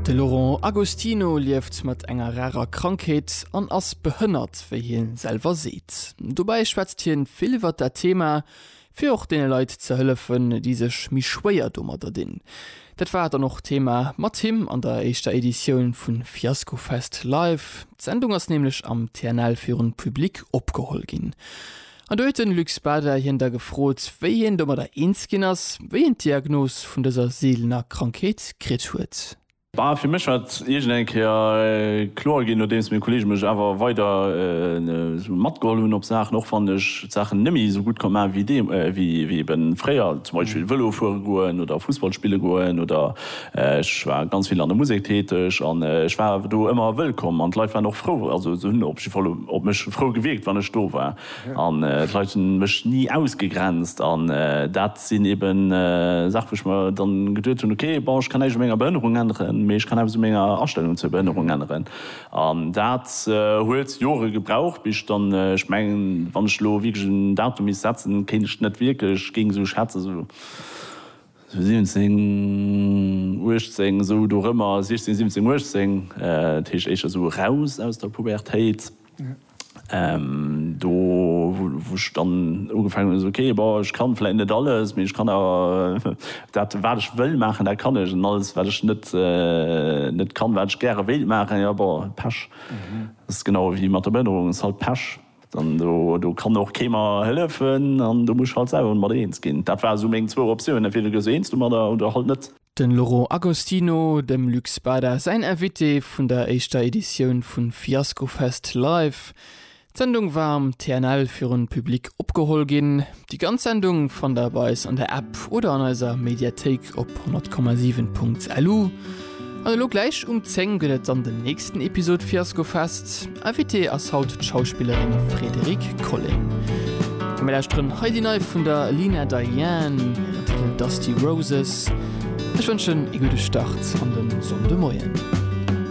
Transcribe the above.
De Laurent Agostino lieft mat enger rarer Krankheet an ass behënnert, wéi hie selwer seet. Dobäi schwätzt hien vill iwwert dat Thema, fir och deene Leit ze hëllefen, déi sech méi schwéier domadder dinn. Dat war dann och Thema mat him an der éischter Editioun vu Fiaskofest Live. D'Sendung ass nämlech am TNL virun Public opgeholl ginn. An do huet den Luc Bader hien da gefrot, wéi hien domadder eens ginn ass, wéi hien d'Diagnos vun dëser seelener Krankheet kritt huet. Bah, fir mech war et iergend eng Kéier kloer ginn, nodeems meng Kolleege mech awer weider esou matgeholl hunn op Saachen, och wann ech d'Saachen net méi esou gutt konnt maachen, wéi ebe fréier, zum Beispill Vëlo fuere goen oder Fussball spille goen oder Ech war ganz vill an der Musek täteg an ech war do ëmmer wëllkomm an d'Leit waren och frou. Also se hunn op jidde Fall op mech frou gewierkt, wann ech do war. An d'Leit hunn mech ni ausgegrenzt an dat sinn eben Saache wou ech mer dann geduet hunn, ok, bon ech kann näischt u menger Behënnerung änneren, mee ech kann eppes u menger Astellung zur Behënnerung änneren. An dat huet Jore gebraucht bis ech dann, ech mengen wann ech elo wierklech en Datum misst setzen, kéint ech net wierklech géing esou schätzen, esou. 17, 18, esou dorëmmer, 16, 17, 18, dat heescht éischter esou eraus aus der Pubertéit, do wou ech dann ugefaangen hunn, esou ok, bon, ech kann vläit net alles, mee ech kann awer dat wat ech wëll maachen, dat kann ech, an alles wat ech net net kann, wat ech gäre wéilt maachen, jo, bon, Pech, ass genau ewéi mat der Behënnerung, ass halt Pech. An do kann och kee mer hëllefen an do muss ech halt selwer mat eens ginn. Dat ware sou meng zwou Optiounen. Entweder gëss du eens domadder oder halt net. Den Laurent Agostino, dem Luc Spada säin Invité vun der éischter Editioun vu Fiascofest Live. D'Sendung war am TNL virun Public opgeholl ginn. Déi ganz Sendung fannt der bei eis an der App oder an eiser Mediathéik op 100,7.lu. An elo gläich um 10 gëtt et dann den nächsten Episod Fiasko Fest. Invitée ass haut d'Schauspillerin Frédérique Colling. Komm mir lauschteren hei déi nei vun der Lina Diane, hiren Titel Dusty Roses. Ech wënschen ee gudde Start an den Sonndemoien.